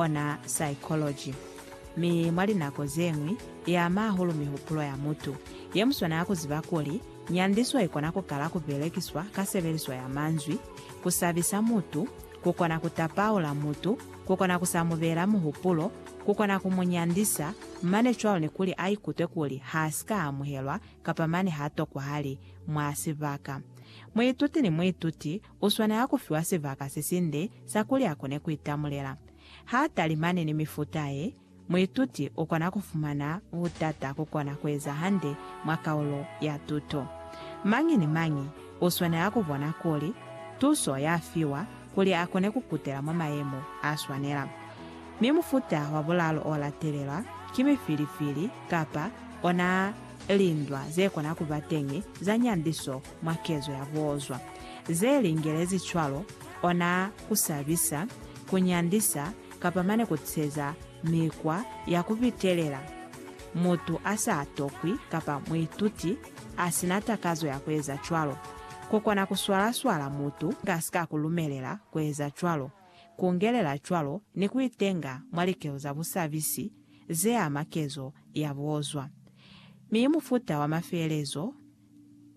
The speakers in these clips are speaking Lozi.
ona psychology, mi mwa linako zeñwi iama hahulu mihupulo ya mutu. Yemuswanela kuziba kuli, nyandiso ikona kukala kubelekiswa ka sebeliso ya manzwi, kusabisa mutu, kukona kutapaula mutu, kukona kusa mubeela muhupulo, kukona kumunyandisa, mane cwalo ni kuli aikutwe kuli haasika amuhelwa kapa mane hatokwa hali mwa sibaka. Muituti ni muituti U swanela ku fiwa sibaka se sinde sa kuli a kone ku itamulela. Ha a talimani ni mifuta ye, muituti u kona ku fumana butata ku kona ku eza hande mwa kaulo ya tuto. Mañi ni mañi u swanela ku bona kuli tuso ya fiwa kuli a kone ku kutela mwa mayemo a swanela. Mi mufuta wa bulalu o latelelwa ki mifilifili kapa ona lindwa ze kona ku ba teñi za nyandiso mwa kezo ya boozwa, ze lingelezi cwalo, ona ku sabisa, ku nyandisa, kapa mane ku tiseza mikwa ya ku pitelela mutu a sa tokwi kapa muituti a si na takazo ya ku eza cwalo. Ku kona ku swala-swala mutu a si ka ku lumelela ku eza cwalo, ku ngelela cwalo ni ku itenga mwa likelo za busabisi ze ama kezo ya boozwa. Mi mufuta wa mafeelezo,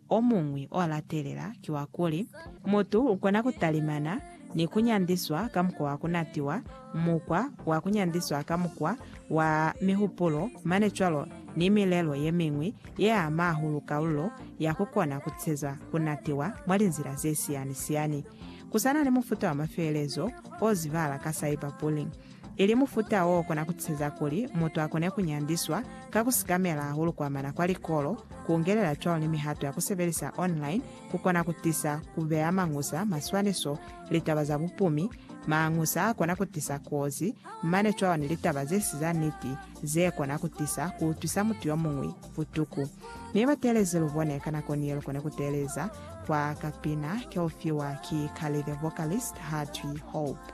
Omuñwi olatelela ki wakuli, mutu ukona kutalimana ni kunyandiswa ka mukwa wa kunatiwa, mukwa wa kunyandiswa ka mukwa wa mihupulo, mane cwalo ni milelo yemiñwi yeama hahulu kalulo ya kukona kuteza kunatiwa mwa linzila zesiyani-siyani. Kusana ni mufuta wa mafeelezo ozibala ka cyberbullying, ili mufuta o kona ku tiseza kuli mutu a kone ku nyandiswa ka ku sikamela hahulu ku amana kwa likolo, ku ungelela cwalo ni mihato ya ku sebelisa online ku kona ku tisa ku beya mañusa, maswaniso, litaba za bupumi, mañusa a kona ku tisa kozi, mane cwalo ni litaba ze si za niti ze kona ku tisa ku utwisa mutu yo muñwi butuku. Mi ba teelezi lu bone ka nako ni ye lu kone ku teeleza kwa kapina ke u fiwa ki Carly the Vocalist ha twi Hope.